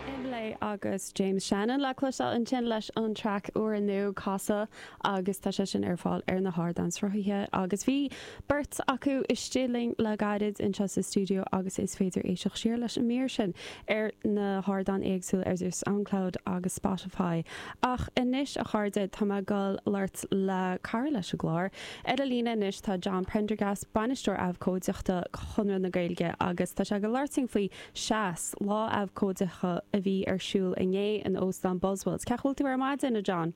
Imlé agus James Shannon le cloisteáil ansin leis an traic úr inniu, Casadh, agus tá sé sin ar fáil ar na hardáin sruthaithe. Agus bhí beirt acu istigh linn le gairid anseo sa stiúideo agus is féidir éisteacht siar leis an mír sin ar na hardáin éagsúla ar Soundcloud agus Spotify. Ach anois, a chairde, tá mé ag dul labhairt le cara leis an gclár, Ar a líne anois tá John Prendergast, Bainisteoir Abhcóideachta Chonradh na Gaeilge agus tá sé ag labhairt faoi Seas, lá abhcóideacha a bhí ar siúl inné in Óstán Buswells. Ceach bhfuil tú ar maidin, a John?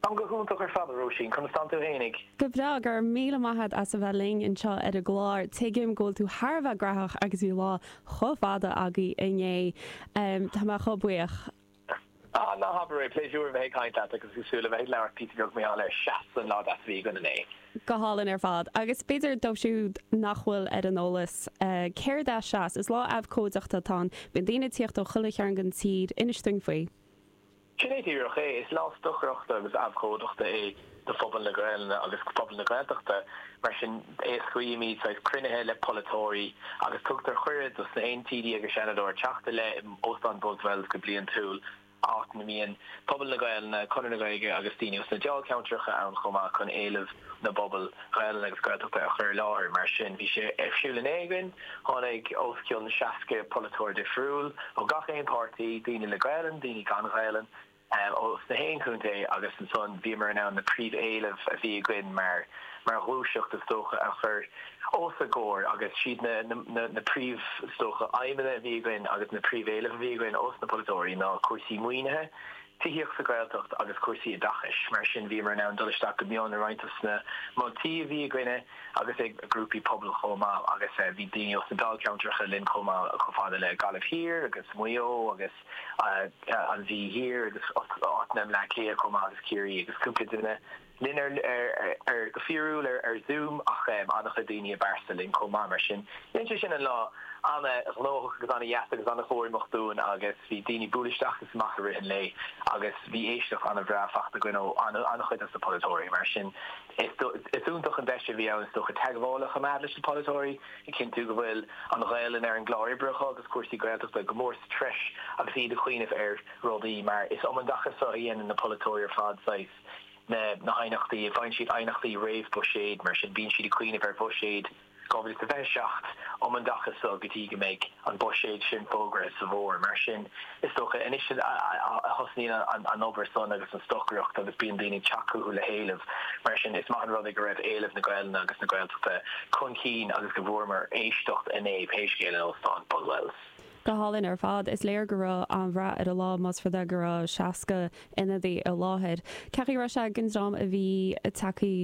Táim go hiontach ar fad, a Róisín, conas tánn tú fhéinig? Go breá, go raibh míle maith agat as a bheith linn anseo ar an gclár. Tuigim go bhfuil tú thar a bheith graitheach agus bhí lá chomh fada agaibh inné. Tá mé chomh buíoch. Ah, ná habair é! Pléisiúr a bheith ag caint leat agus ag súil le bheith ag labhairt píosa beag mar gheall ar Seas, an lá deas a bhí againn inné. Go hálainn ar fad. Agus b'fhéidir dóibh siúd nach bhfuil ar an eolas céard é Seas, is lá abhcóideachta atá ann. Bíonn daoine ag tíocht ó chuile chearn den tír. Inis dúinn faoi. Sin é díreach é. Is lá stocaireachta agus abhcóideachta é. do phobal na Gaelainne agus phobal na Gaeltachta. Mar sin, éascaímíd saghas cruinnithe le polaiteoirí agus tugtar cuireadh dos na haon TD agus Seanadóir teacht i leith in Óstán Buswells go bliantúil, áit ina mbíonn pobal na Gaelainne, Conradh na Gaeilge agus daoine os na dáilcheantracha ann chomh maith chun éilimh na bpobal Gaelainne agus Gaeltachta a chur i láthair. Mar sin, bhí sé ar siúl inné againn. Tháinig os cionn seasca polaiteoir difriúil, ó gach aon páirtí, daoine le Gaelainn, daoine gan Ghaelainn, ó sna haon chontae agus ansan bhíomar in ann na príomhéilimh a bhí againn mar mar ghluaiseacht is dócha a chur os a gcomhair agus siad na na na príomh is dócha aidhmeanna a bhí againn agus na príomhéilimh a bhí againn ós na polaiteoirí ná cúrsaí maoinithe tithíocht sa Ghaeltacht agus cúrsaí oideachais mar sin bhíomar in ann dul isteach go mion i roinnt dos na moltaí a bhí againne agus ag grúpaí pobail chomh maith agus bhí daoine ós na Dáilcheantracha linn chomh maith chomh fada le Gaillimh Thiar agus Maigh Eo agus. an Mhí Thiar agus áiteanna i mBleá Cliath chomh maith agus Ciarraí agus cúpla duine linn ar, go fíorúil ar Zoom ach an-chuid daoine i bpearsa linn chomh maith mar sin dhein sé sin an lá an-ghnóthach agus an-dheas agus an-chorraitheach dúinn agus bhí daoine ag bualadh isteach agus amach i rith an lae agus bhí éisteacht an-bhreá faighte againn ó an-chuid dos na polaiteoirí mar sin is iontach an deis a bhí ann is dócha teagmháil a choimeád leis na polaiteoirí. A chinntiú go bhfuil an Ghaelainn ar an gclár oibre acu agus cúrsaí Gaeltachta go mór sa treis agus iad ag cuimhneamh ar rudaí mar is um an dtaca seo a dhéanann na polaiteoirí ar fad saghas na haighneachtaí a faigheann siad aighneachtaí réamh-buiséid mar sin bíonn siad ag cuimhneamh ar bhuiséad 2027 um an dtaca seo go dtí go mbeidh an buiséad sin fógraithe sa bhfómhar mar sin Is dócha, anois a thosnaíonn an obair san agus an stocaireacht agus bíonn daoine ag teacht chucu le héileamh. Mar sin, is maith an rud é go raibh éileamh na Gaelainne agus na Gaeltachta chun cinn agus go bhfuaireamar éisteacht inné, pé scéal, in Óstán Buswells. Go hálainn ar fad. Is léir go raibh an-rath ar an lá, más rud é go raibh 60 ionadaí i láthair. Cén chaoi a raibh sé ag an dream a bhí ag teacht.